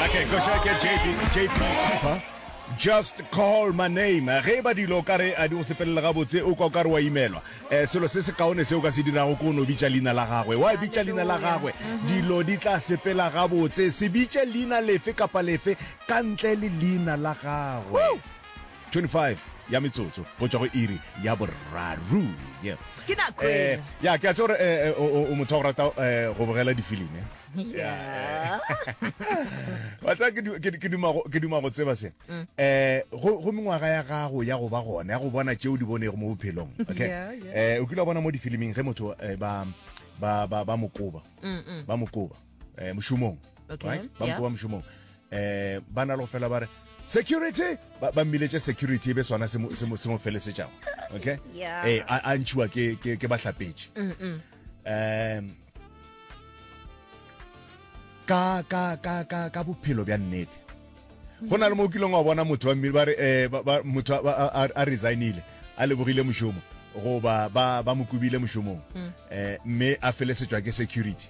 Okay, go check it, JP, JP, huh? just call my name ge ba dilo ka re a di go sepelele gabotse o kwa o ka re wa imelwa um selo se se kaone se o ka se dirago ko o ne o bitša leina la gagwe wa bitša leina la gagwe dilo di tla sepela gabotse se bitše leina lefe kapa lefe ka ntle le leina la gagwe 25 ya metsotso go tswa go iri ya borraru yeah. ke nako Eh, eno. ya ke a tse gore eh, eh, o o- o motho wa go rata eh, go bogela difilimi Yeah. batla ke du- ke- ke duma go- ke duma go tseba se Mm. eh go go mengwaga ya gago ya go ba gona ya go bona tšeo di bonego mo bophelong okay Yeah, yeah. eh o kile wa bona mo difiliming ge motho eh, ba ba ba ba mokoba Mm, mm. ba mokoba eh mošomong Okay, right ba yeah. mokoba mošomong eh ba na le go fela ba re security ba ba mmiletše security e be sona se mo- se mo se mo felesetšago okay Yeah. eh a a ntšhiwa ke ke ke bahlapetše Mm, mm. um ka ka ka ka ka bophelo bja nnete go na le mo kileng wa bona motho wa mmele ba re eh, motho a resignile a lebogile mošomo goba ba ba mo kobile mošomong um mme a felesetšwa ke security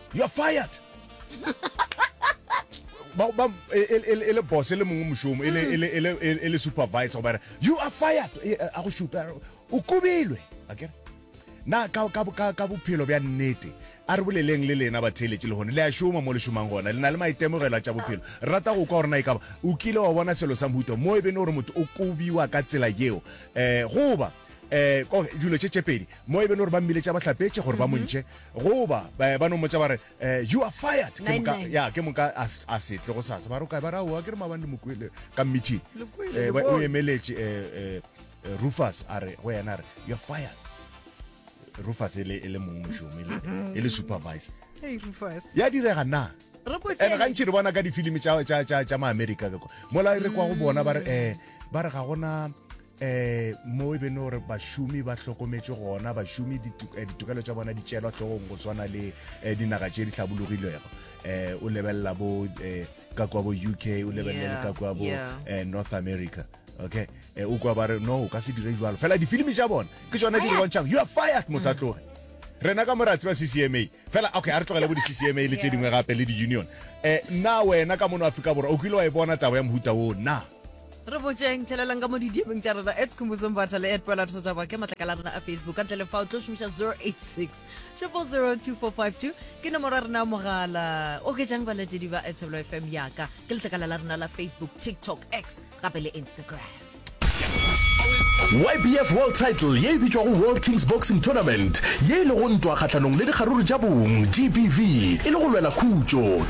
you are fired e le boss e le mongwe mošomo e le supervisor gobare you are fired a go šupa o kubilwe akere na ka bophelo bja nnete a re boleleng le lena batheeletše le gone le a šoma mo le šomang gona le na le maitemogelo a tša bophelo rata go kwa gore na e kaba o kile wa bona selo sa mohuta mo e bene gore motho o kobiwa ka tsela yeo um goba um ko dilo tše tšepedi mo e be le gore ba mmiletša ba hlapetše gore ba montšhe goba ba ba no mmotsa ba re um you are fired ke moka Nine, nine. ya ke moka a s- a se tle go sasa ba re o kae ba re aowa ke re maabane mokwele ka meeting Le kwele, Eh, le ba- o bone. emeletše um rufus a re go yena a re you are fired rufus e le e le mong mošomo e le- e le supervisor Hey, Rufus. ya direga na Re go and tšee. gantši re bona ka difilimi tša- tša tša- tša maamerika ka kwa mola re kwa go bona ba re um ba re ga gona Eh, mo e bene gore bašomi ba hlokometše gona bašomi ditu- eh, ditokelo tša bona di tšelwa hlogong go swana le eh, dinaga tše di hlabologilwego eh, o lebelela bo eh, ka kwa bo uk o lebelele Yeah, ka kwa bo yeah. eh, north america okay eh, o kwa ba re no o ka se dire jalo fela difilimi tša bona ke tsona di re bontšhang you are fired motho a tloge rena ka moratsi ba ccma fela okay a re tlogele bo di-ccma le tše Yeah. dingwe gape le di-union um na wena ka mono afrika borwa o kile wa e bona taba ya mohuta woo na re botšeng tšhelelang ka mo didiemeng tša rena ets khumbuzo mbatha le ed pela tsoja ba ke matlakala a rena a facebook ka ntle le fa o tlo šomiša 086 4002452 ke nomoro ya rena ya mogala o ketšang balatedi ba etsebelo fm yaka ke letlakala la rena la facebook tiktok x gape le instagram YBF World Title ye e bitšwago World Kings Boxing Tournament ye e lego ntwa kgahlanong le dikgaruru tša bong, GBV, e le go lwela khutšo.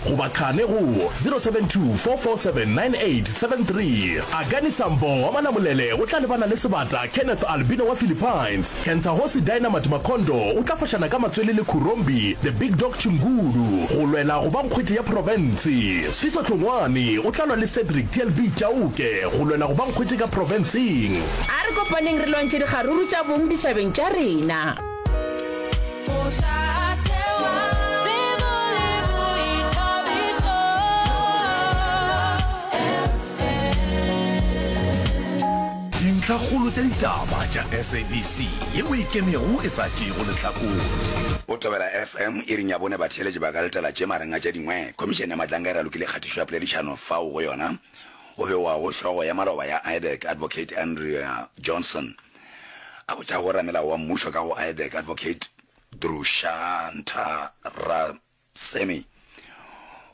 goba qhane go 072 447 9873. Agani Sambo wa Malamulele o tla lebana le sebata Kenneth Albino wa Philippines. Kentsahosi Dynamite Makhondo o tla fošana ka matswele le Khurombi The Big Dog Chingulu go lwela go ba nkgwete ya profense. Sfiso Hlongwane o tla lwa le Cedric TLB Chauke go lwela go ba nkgwete ka profenseng. A re kopaneng re lwantšhe dikgaruru tša bong ditšhabeng tša rena. Dintlhakgolo tša ditaba tša SABC yeo e kemego e sa tšeego lehlakore. O tobela FM iring ya bone batheeletši ba ka letela tše mareng a tše dingwe. Khomišene ya Matlanka e ralokile kgatišo ya poledišano fao go yona go bewago hlogo ya maloba ya IDEC, Advocate Andrea Johnson. A botša go ramelao wa mmušo ka go Aedeck Advocate Drushanntha Ra-Semi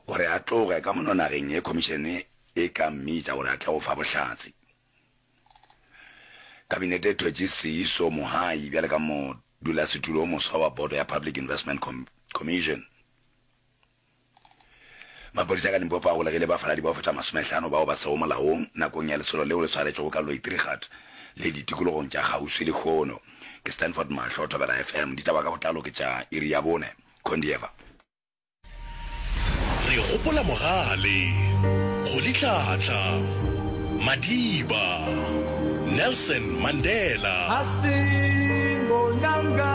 gore a tloge ka mono nageng ye khomišene e ka mmitša gore a tle go fa bohlatse. Kabinete e thwetše Seeiso Mohai bjale ka modulasetulo o moswa wa boto ya Public Investment Commission. Maphodisa ka Limpopo a golegile bafaladi ba go feta masomehlano bao ba sego molaong nakong ya lesolo leo le swaretšwego ka Loitrigat le ditikologong tša kgauswi lehono. Ke Stanford Mahlo, Thobela FM, ditaba ka botlalo ke tša iri ya bone. Condieva. Re gopola Mogale, Kgolitlhatlha, Madiba, Nelson Mandela. Hastin Bonanga.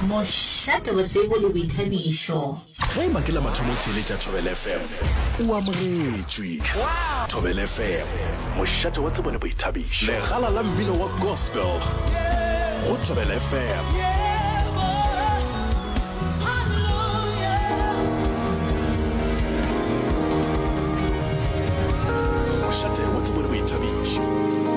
Mošate, botsebo le boithabišo. Ge e ba ke la mathomo theeletša Thobela FM, o amogetšwe. Thobela FM, mošate wa tsebo le boithabišo. Legala la mmino wa gospel go Thobela FM.